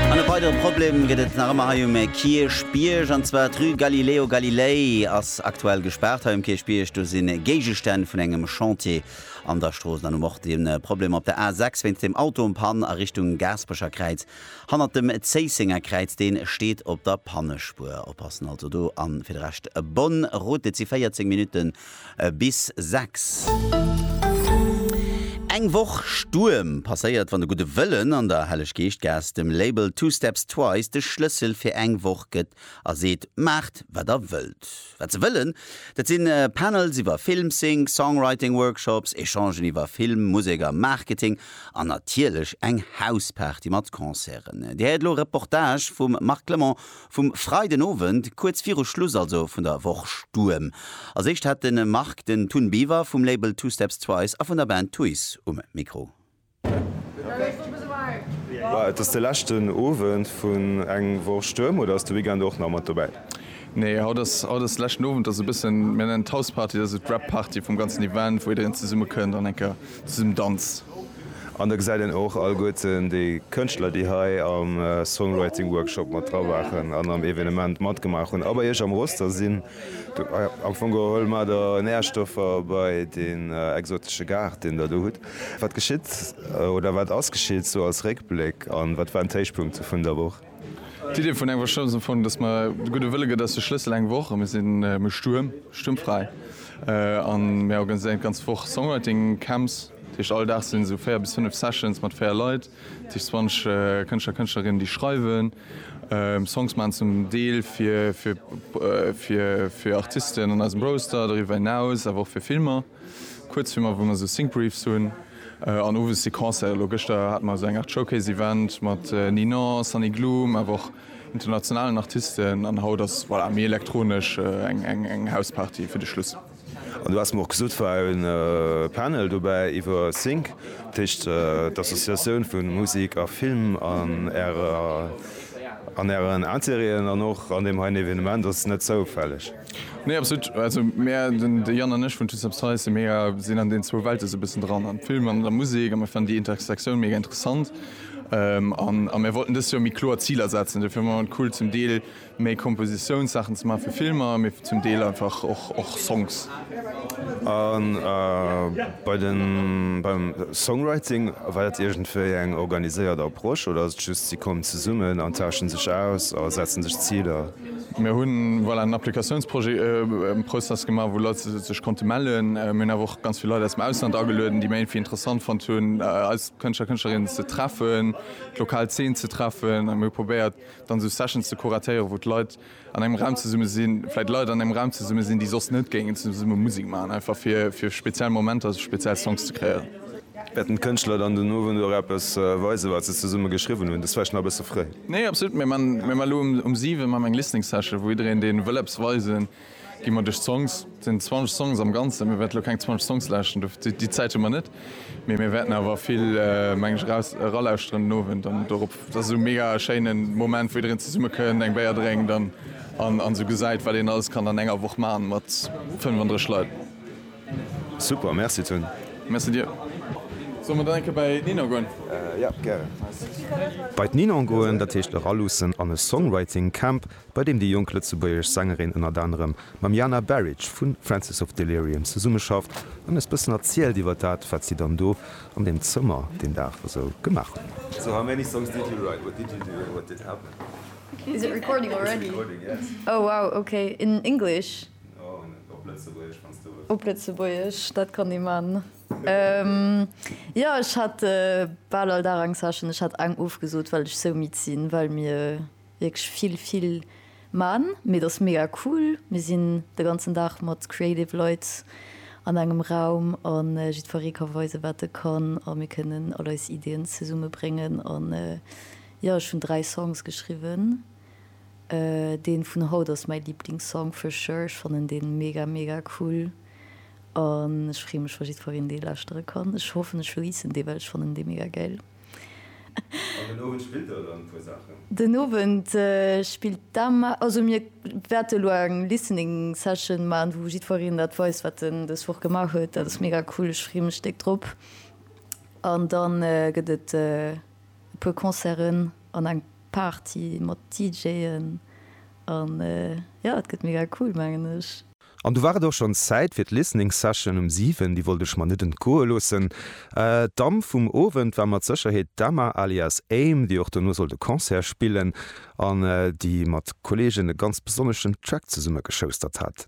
An e weidere Problem gëtt et nach ëmmer hei um Kierchbierg, an zwar d'Rue Galileo Galilei ass aktuell gespaart. Hei um Kierchbierg, do si Géigestänn vun engem Chantier an der Strooss. Dann hu mer och de Problem op der A6 wéinst dem Auto um Pan a Richtung Gaasperecher Kräiz, hannert dem Zéissenger Kräiz. Dee steet op der Pannespuer. Oppassen also do! A fir de Rescht, Bonn, Route, et si 14 Minutten Bis 6. Eng Woch Stuerm passéiert, wann de gudde Wëllen an der Helleg-Geescht-Gaass dem Label Two Steps Twice de Schlëssel fir eng Woch gëtt a seet, Maacht wat der wëllt. Wat se wëllen, dat sinn Panels iwwer Film, Sync, Songwriting Workshops, Echangen iwwer Film, Musek a Marketing an natierlech eng Hausparty mat Concerten. Dir héiert elo e Reportage vum Marc Clement Vum Freiden Owend, kuerz viru Schluss also vun der Woch Stuerm. Als éischt hat de Marc den Tun Beaver vum Label Two Steps Twice a vun der Band Tuys um Mikro. Et ass de leschten Owend vun eng Woch Stuerm oder ass de Weekend och nach mat dobäi? Nee, haut ass haut ass leschten Owend, ass e bëssen, mir nennen et House Party, dat ass esou d'Wrap Party vum ganzen Event, wou jiddereen zesummekënnt an enker zum Danz. An da gesäit een och alleguerten déi Kënschtler, déi hei am Songwriting Workshop mat dra waren an am Evenement matgemaach hunn a bei Iech am Roster sinn. Am Fong geholl mat der Nährstoffer bei deen exotesche Gaart, deen Der do hutt. Wat geschitt oder wat ass geschitt sou als Réckbléck an wat waren d'Héichpunkte vun der Woch? D'Idee vun engem Workshop ass am Fong, dass mer de gudde Wëlle gëtt ass de Schlëssel, eng Woch, mir sinn méi stuerm, stuermfräi an mir organiséieren d'ganz Woch Songwriting Camps. Dat heescht all Dag sinn esou 4 bis 5 Sessions mat 4 Leit, dat heescht 20 Kënschtler, Kënschtlerinnen, déi schreiwen, Songs maachen, zum Deel fir Artisten an eisem Roster, doriwwer hinaus awer och fir Filmer. Kuerzfilmer wou mer sou Sync-Briefs hunn an owes Sequencen. Elo gëschter hate mer sou eng Art Showcase-Event mat Ninon, Sunny Gloom awer och internationalen Artisten an haut ass voilà méi elektronesch eng eng House-Party fir de Schluss. An du haass mer och gesot war e Panel dobäi iwwer Sync, dat heescht d'Associatioun vu Musik a Film an ärer an ären Interêten an och an deem heien Evenement ass net zoufälleg. Nee absolut, also mär, den de Yann an ech vun Toots Upsize, mär sinn an deenen zwou Welte esou e bëssen dran, am Film an an der Musek, a mär fannen déi Intersektioun mega interessant an a mär wollten dëst Joer méi kloer Ziler setzen. Dofir fannen et cool zum Deel méi Kompositiounssachen ze maachen fir Filmer, mee zum Deel einfach och och Songs. A bei den beim Songwriting, war dat iergendwéi eng organiséiert Approche oder ass et just si kommen zesummen an tauschen sech aus a setzen sech Ziler? Mir hu voilà en Applikatiounsprozess gemaach, wou Leit sech konnte mellen. Mir hunn awer och ganz vill Leit aus dem Ausland agelueden, déi mer irgendwie interessant fonnt hunn, eis Kënschtler, Kënschtlerinnen ze treffen, d'lokal Zeen ze treffen. A mir hu probéiert, dann esou Sessions ze kuratéieren, wou d'Leit an engem Raum zesumme sinn, vläicht Leit an engem Raum zesumme sinn, déi soss net géingen zesumme Musek maachen, einfach fir fir speziell Momenter, speziell Songs ze kréieren. Wäerten d'Kënschtler dann den Owend och eppes weisen, wat se zesumme geschriwwen hunn? Dat ass vläicht nach e bësse fréi. Nee absolut, mir man elo um 7 man eng listening session wou iedereen deen wëll eppes weisen gin man duerch d'Songs, et sin 20 Songs am ganzen, mir wäerten elo keng 20 Songs lauschteren, dofir déi Zäit hun mer net, mee mir wäerten awer vill meng ech eraus eralauschteren den Owend an dorop, et ass esou mega e schéinen Moment wou iedereen zesumme kënnt, eng Béier drénkt an an esou gesäit wat een alles kann an enger Woch man mat 35 Leit. Super, merci Tony. Merci dir. Solle mer dann eng Kéier bei d'Ninon goen? Jo, gären. Bei d'Ninon goen, dat heescht eraluussen an e Songwriting Camp, bei deem déi jonk lëtzebuergesch Sängerin ënnert anerem mam Jana Baric vu Francis of Delirium zesummeschafft an eis bëssen erzielt iwwer dat, wat si dann do an deem Zëmmer deen Dag esou gemaach hunn. So how many songs did you write? What did you do and what did happen? Is it recording already? It's recording, yes. Oh wow, okay, in English? Op Lëtzebuergesch, dat kann ee man. Jo, ech hat bal all Dag eng Session. Ech hat eng ofgesot, well ech sou midd sinn, well mir wierklech vill, vill man. Mee et ass mega cool. Mir sinn de ganzen Dag mat creative Leit an engem Raum a jiddweree ka weisen, wat e kann a mir kënnen all eis Ideeën zesummebréngen. An jo, ech hunn dräi Songs geschriwwen. Deen vun haut ass mäi Liblingssong for sure, ech fannen deen mega mega cool an ech freen mech wa jiddfereen deen lauschteren kann. Ech hoffen ech releasen deen well ech fannen deen mega gäil. An den Owend spillt der dann e puer Saachen? Den Owend spillt d'Emma, also mir wäerten elo eng Listening Session maan wou jiddfereen dat weist wat en des Woch gemaach huet. Dat ass mega cool, ech freen mech déck drop. An dann gëtt et e puer Concerten an eng. Party mat DJen an jo et gëtt mega cool mengen ech. An du war et och schonns Zäit fir d'Listening Session um 7, déi wollt ech mer net entgoe loossen. D'Damm vum Owend war mat Sécherheet d'Emma alias Aim, déi och dono sollt e Concert spillen an déi mat Kolleegen e ganz besonneschen Track zesumme geschoustert hat.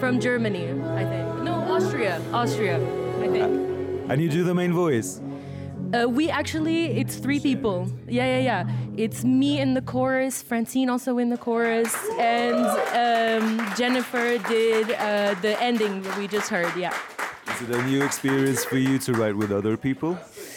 From Germany I think no Austria Austria I think And you do the main voice? Uh we actually it's three people yeah yeah yeah it's me in the chorus Francine also in the chorus and um Jennifer did uh the ending we just heard yeah Is it a new experience for you to write with other people?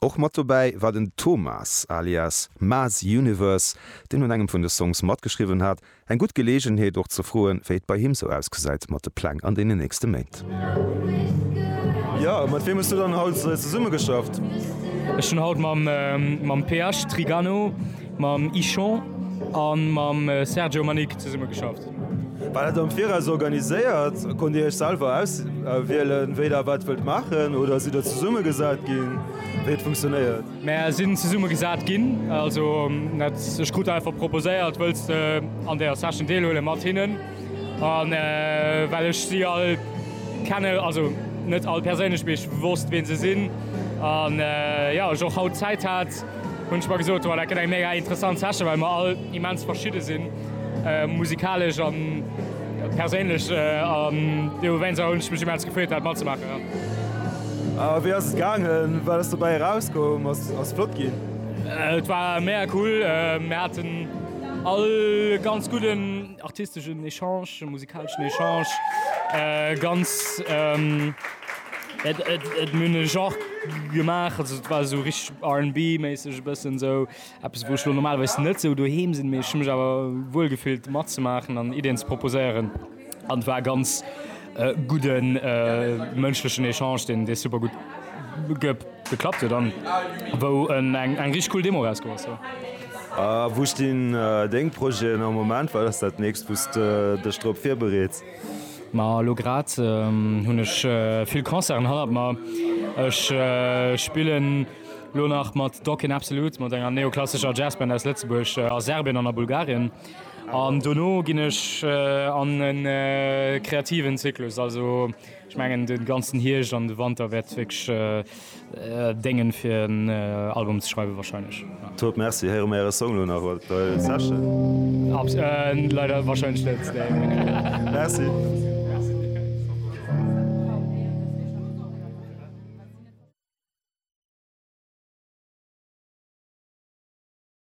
Och mat dobäi war den Thomas alias Maes Universe, deen un engem vun de Songs matgeschriwwen hat. Eng gutt Geleegenheet och ze froen, wéi et bei him sou ausgesäit mat de Pläng an deenen nächste Méint. Jo, mat wiem hues du dann haut zesumme geschafft? Ech hunn haut mam PH Trigano, mam Ichon a mam Sergio Manic zesumme geschafft. War dat am Viraus organiséiert? Konnt Dir Iech selwer auswielen, wéi Der wat wëllt maachen oder sidd Der zesumme gesat ginn? Wéi huet et funktionéiert? Mär sinn zesumme gesat ginn. Also net ech krut einfach proposéiert, wëlls de an där Session deelhuele mat hinnen? An well ech si all kenne, also net all perséinlech, mee ech wosst, wee se sinn an jo, ech och haut Zäit hat, hunn ech mer gesot, Well dat gëtt eng mega interessant Session, well mer all immens verschidde sinn. Musikalesch a perséinlech an deem Moment hunn ech mech immens gefreet dat matzemaachen. A wéi ass et gaangen? Wat ass dobäi erauskomm? Ass et flott ginn? Et war mega cool. Mir haten all e ganz gudden artisteschen Echange, musikaleschen Echange, ganz et mir hunn e Genre gemaach, also et war esou richteg RNB-méisseg e bëssen esou Eppes, wou ech elo normalerweis net esou doheem sinn, mee ech hu mech awer wuel gefillt matzemaachen an Iddien ze proposéieren. An et war e ganz gudde mënschlechen Echange, deen super gutt geklappt huet an wou eng richtig cool Demo eraus gouf ass. A wou stinn deng Projeten am Moment? Wat ass dat Nächst, wou s de dech drop virbereets? Ma elo grad hunn ech vill Concerten hannert mer. Ech spillen. Lo nach mat Doc in Absolute, mat enger neoklassescher Jazzband aus Lëtzebuerg a Serbien an a Bulgarien. An dono ginn ech an e kreativen Zyklus. Also ech mengen de ganzen Hierscht an de Wanter wäert wierklech déngen, fir en Album ze schreiwen warscheinlech, jo. Top, Merci. Héiere mer äre Song lo nach mat der Session? Abs. Leider warscheinlech net, nee. Merci.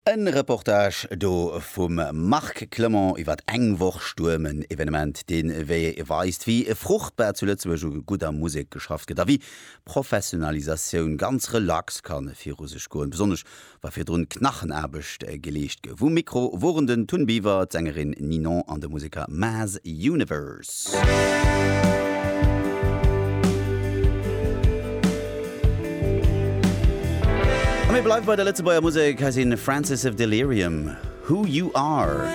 E Reportage do vum Marc Clement iwwer eng Woch Stuerm, en Evenement, deen weist, wéi fruchtbar zu Lëtzebuerg u gudder Musek geschafft gëtt a wéi Professionalisatioun ganz relax kann viru sech goen, besonnesch Wa virdrun Knachenaarbecht geleescht gouf. Um Mikro woren den Tun Biver, d'Sängerin Ninon an de Museker Mass Universe. A mir bleiwe bei der Lëtzebuerger Musek. Hei si Francis of Delirium, Who You Are.